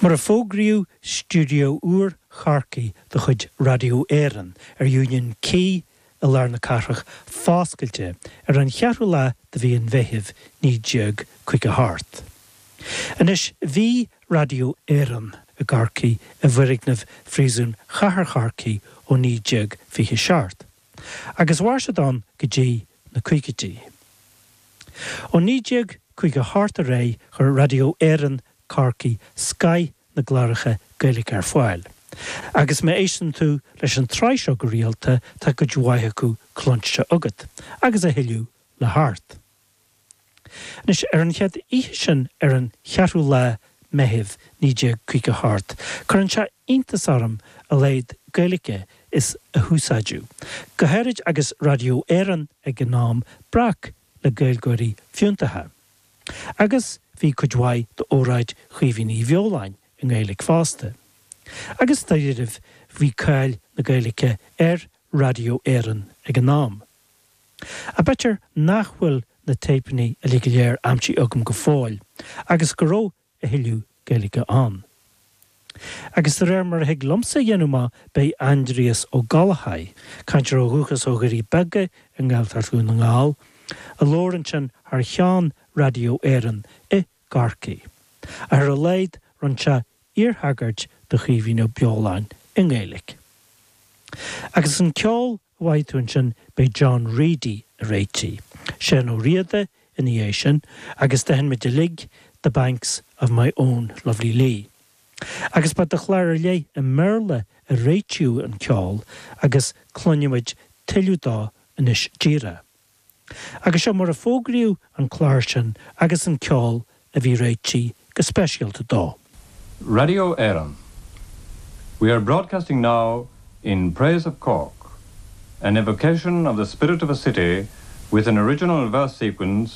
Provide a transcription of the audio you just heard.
Mar a fógraíodh stiúideo úr Chorcaí de chuid Raidió Éireann ar Union Quay i lár na cathrach foscailte ar an cheathrú lá de mhí an Mheithimh 1958. Anois bhí Raidió Éireann i gCorcaigh i bhfoirgneamh Phríosún Chathair Chorcaí ó 1927 agus mhair siad ann go dtí na caogaidí. Ó 1958 ar aghaidh chuir Raidió Éireann, Corcaigh, scaith na gcláracha Gaeilge ar fáil. Agus má éisteann tú leis an tsraith seo go rialta tá cuid mhaith acu cluinste agat, agus a thuilleadh le theacht. Anois, ar an chéad oíche sin, ar an cheathrú lá Meithimh, 1958, cuireann sé iontas orm a laghad Gaeilge is a húsáideadh, go háirid agus Raidió Éireann ag an am breac le Gaeilgeoirí fiúntacha. Agus bhí cuid mhaith d'óráid Chaoimhín Uí Bheoláin i nGaeilge fosta. Agus, dáiríribh, bhí cáil na Gaeilge ar Raidió Éireann ag an am. Ach b'fhéidir nach bhfuil na téipeanna uilig go léir aimsithe agam go fóill agus go raibh a thuilleadh Gaeilge ann. Agus de réir mar a thig liomsa a dhéanamh amach ba é Aindrias Ó Gallchóir, cainteoir ó dhúchas ó Dhoirí Beaga i nGaeltacht Dhún na nGall, a labhair ansin thar cheann Raidió Éireann i gCorcaigh, ach ar a laghad rinne sé iarthagairt do Chaoimhín Ó Beoláin i nGaeilge. Agus an ceol! a mhothaigh tú ansin ba é John Reidy a réitigh Seán Ó Riada ina dhiaidh sin agus d'aithin muid uilig The Banks of My Own Lovely Lee agus ba do chlár ar leith i mBéarla a réitíodh an ceol agus cluinfidh muid tuilleadh dó anois díreach. Agus seo mar a fógraíodh an clár sin agus an ceol a bhí réitithe go speisialta dó. Radio Éireann, We are broadcasting now in praise of Cork, an evocation of the spirit of a city with an original verse sequence,